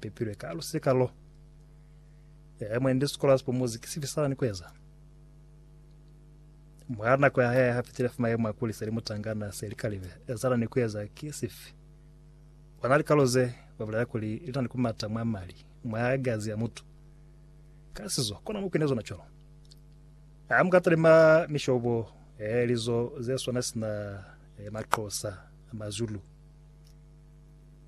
Pepilwe ka lusika lo. Yaya mwendi sikola sipo muzi ki sifi sala ni kueza. Mwa nako ya haya hafitile fa mayemo a kuli seli mutangana seli kalive ezala ni kueza ki sifi. Wana likalo ze ba bulela kuli lina ni kumata mwa mali, mwa gazi ya mutu. Ka sizo, kona mupi ne zona cwalo. Ha muka talima mishobo eh, lizo ze swana sina eh, Maxhosa, Mazulu.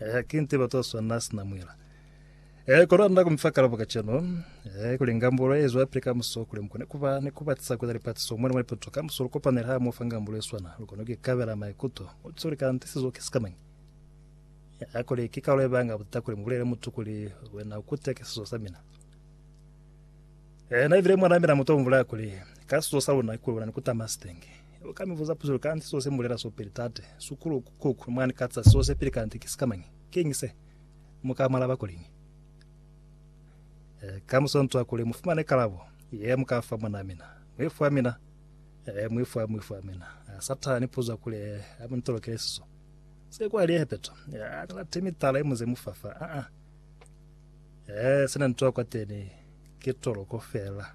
Eh, ki nte batu ba swana sina mwila. Eh, kono anna kumfa kalabo ka cheno. Eh, kuli ngambulo ezo ya pili ka muso kuli mukone kuba ni kuba tisa kuza lipatiso mwana mwa lipoto ka muso lukopanela ha mofa ngambulo e swana. Lukone ki kabela maikuto. Utsi uli kanti sizo ki sikamanyi. Eh, kuli ki kaulo ebanga butata kuli mubulele mutu kuli wena ukute ke sizo sa mina. Eh, na ibile mwana mina muto mvula kuli ka sizo sa luna kuli wena ni kutama sitenge. Lu ka mi buza puzo lu kanti so se mulela so peli tate, sukulu, kuku, mwani katsa so se peli kanti ki sikamañi? Kiñi se? Mu ka mu alaba kuliñi? E, ka mu swantswa kuli mu fumane kalabo ye mu ka fa mwanaa mina. Mu i fwa mina. E, mu i fwa, mu i fwa mina. E, Satani puza kuli a mu ntolokele siso. Se kwa liye hepeto. E, a ni late mitala ye muze mu fafa. A, a. E, se na ntoa kwateni ki toloko fela.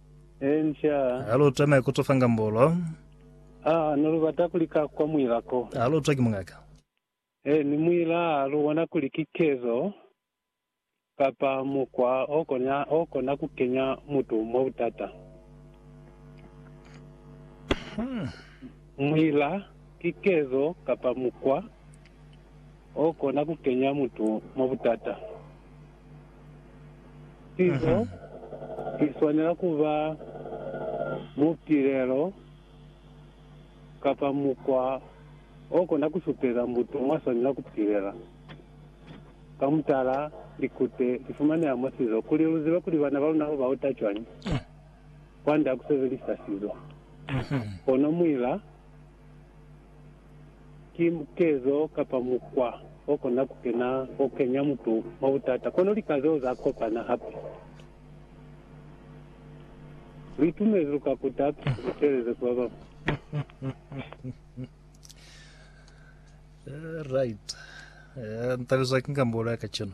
Enca. Ha lu twa nako to fanga mbolo. Aa, ne lu bata kuli ka kwa muila ko. Ha lu twa ki mungaka. Ee, ni muila ha lu bona kuli ki kezo kapa mukwa o kona, o kona ku kenya mutu mwa butata. Muila ki kezo kapa mukwa o kona ku kenya mutu mwa butata. Pizo i swanela ku ba mupilelo kapa mukwa o kona ku supeza mutu mwa swanela ku pilela. Ka mutala, likute li fumaneha mwa sizo. Kuli lu zibe kuli bana ba luna lu ba uta cwañi, kwand'a ku sebelisa sizo. Kono muila. Ki mukezo kapa mukwa o kona ku kena o kenya mutu mwa butata. Kono lika zeo za kopana hape. Lu itumezi lu ka kuta hape lu teeleze ku ba bañwi. Right. Ntabezwa ki ngambolo ya kacenu.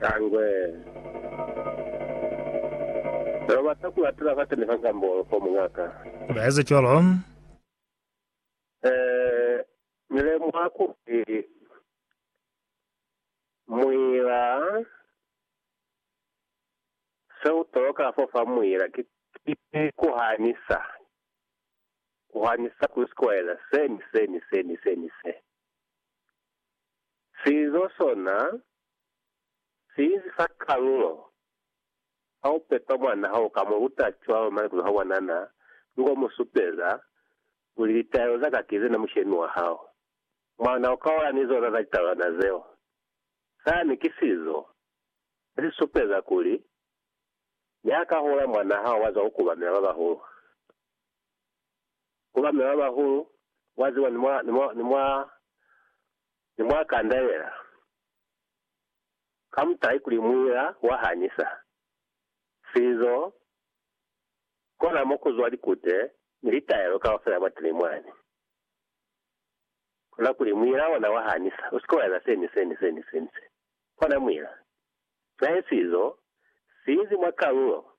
Kangwe. Lo bata ku latela fate ni fa Sambolo fo, muñaka? Ba eza cwalo. Ee, Ni lemuha kuli muila, se u toloka fo fa muila ki, ki ku hanisa, ku hanisa ku sikoela se ni se ni se ni se ni se. Sizo sona siinzi fa kalulo. Ha u pepa mwan'a hao, u ka mu luta cwalo maikutwa a bona n'a li k'o mu supeza kuli litaelo za ka ki ze na mushemi wa hao. Mwan'a u ka ola ni zona za litaelwana zeo. Sani ki sizo se si supeza kuli ni ha ka hula mwan'a hao wa zwa ku kubamela ba bahulu. ku ba mya ba bahulu, wa ziba ni mwa, ni mwa, ni mwa, ni mwa kandelela, ka mutahi kuli muila wa hanyisa. Sizo, kona mo ku zwa likute ni litaelo kaufela mwateni mwani. Kona kuli muila ona wa hanyisa, usike wa eza se, ni se, ni se, ni se, ni se. Kona muila. Nae sizo, si inzi mwa kalulo.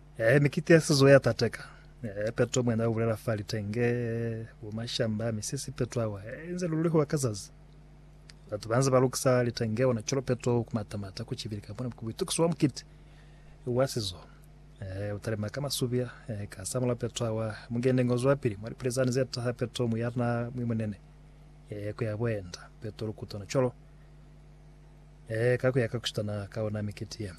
Ee, mi kitiasizo ya tateka. Ee, peto mwena ubulela fa litenge, bumashamba, misisi, peto awa, ee, inze lululihuwa ka zazi. Batu banze balukisa litenge ona cwalo peto kumatamata kucibili kamba ona kubuitukiso bwa mukiti wa sizo. Ee, utalima ka masubia, ee, ka samula peto awa, mungende ngo zwapili mwa lipilizani zetaha peto muyana mwi munene. Ee, kuya boenda, peto lukuta ona cwalo. Ee, ka kuya ka kushitana ka ona mikiti ye.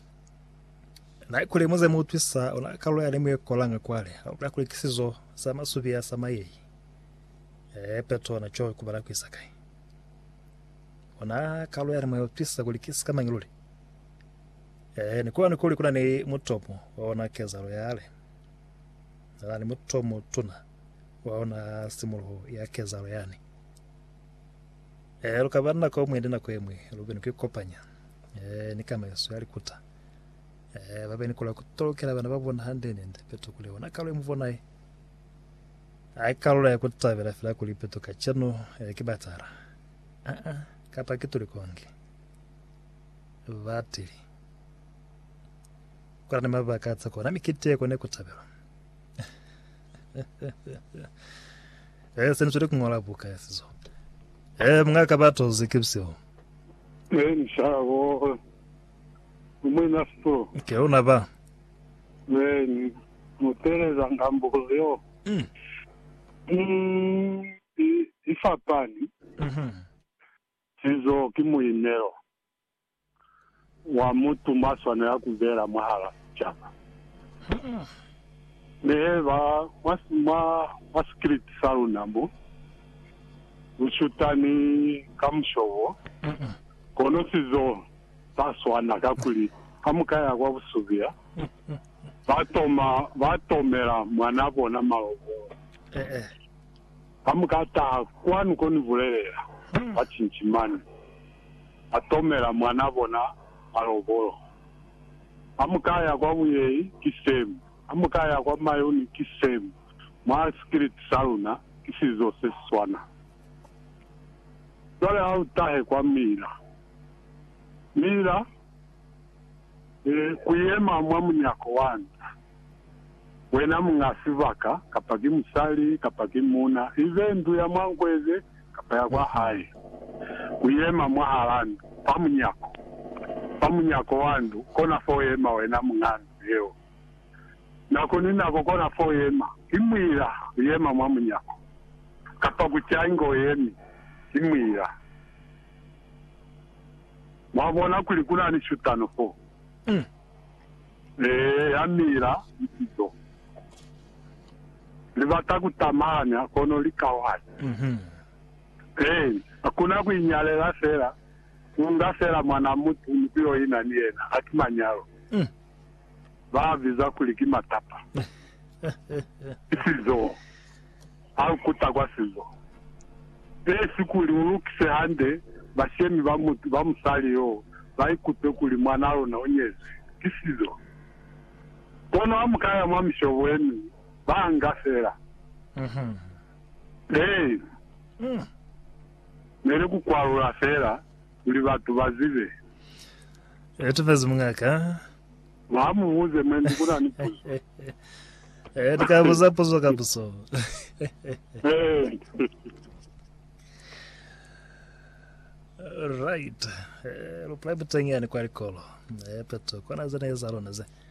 Na ikuli muze mu utwisa ona kalulo ya nemu ye kolanga kwale kalulo ya kulikisizo za masubi ya sama yei e peto ona cho ku bala kuisa kai ona kalulo ya nemu ye utwisa kulikisa ka mangiluli e ni kuona kuli kuna ni mutomo wa ona kezalo yale na ni mutomo tuna wa ona simuluho ya kezalo yani Eh, lu ka ba ni nako yomwende nako yemwi lu be ni ku ikopanya eh, ni kano yesu ya likuta eh, ba be ni kola ku tolokela bana ba bona hande nende peto kuli ona kalo ye mu bonaye ai kalula ya ku tabela fela kuli peto kacenu eh, ki batala ah -ah, kapa ki tuli konge batili kula ni mabaka a tsa kona mikiti ye kone ku tabelwa Eh, se ni zweli ku ṅola buka ya sizo. Eh, munga ka ba tozi ke bisiho. Eh, ni shabo. Umwe na sizo. Ke una ba. Eh, ni muteleza ngambulo yo. Mm. Mm, i, i fapani. Mhm. Sizo ki muinelo. wa mutu mwa swanela ku bela mwahala sicaba. Mi he ba mwa, mwa, mwa sikiliti sa luna mo, lu shutani ka musho wo, kono si zo sa swana, kakuli ha mu ka ya kwa busubila, ba toma, ba tomela mwana bona malobolo. Ha mu ka taha kwanu ko ni bulelela, ba cinci mane. ba tomela mwan'a bona malobolo. Ha mu ka ya kwa buyehi, ki same. Ha mu ka ya kwa mayuni, ki same. Mwa sikiliti sa luna, ki sizo se si swana. Cwale ha u tahe kwa Mila. Mila, ee, ku yema mwa munyako wa nta. Wena muñ'a sibaka, kapa ki musali, kapa ki muuna, ibe ndu ya mwa nkweze kapa ya kwa hae, uyema mwahal'a ndu, fa munyako, fa munyako wa ndu, kona fo uyema wena muñ'a ndu yeo. Nako ni nako kona fo uyema, ki muila, uyema mwa munyako, kapa ku ca ingo uyemi, ki muila. Mwabona kuli kuna ni shutano foo. Eya mila litizo. Libata kutamanya kono likauhanya. Ee, hakuna kuinyalela fela, kuunga fela mwana mutu ni kuyoina ni yena, haki manyalo. Baabiza kuli ki matapa. Litizo. A lu kuta kwa sizo, pesi kuli u lukise hande bashemi ba mutu ba musali yo, ba ikutwe kuli mwanaa luna u nyezwi ki sizo. Kono ha mu ka ya mwa mishobo ye miñwi, ba nga fela. Ee, meli ku kwalula fela kuli batu ba zibe. Etafezi mungaka. Mwa mu buze mwe ndi kuna ni puzo. Eh, ni ka buza puzo ka buso. Right. Eh, lu pula buteng yani kwa likolo. Eh, peto. Kona zene za lona ze.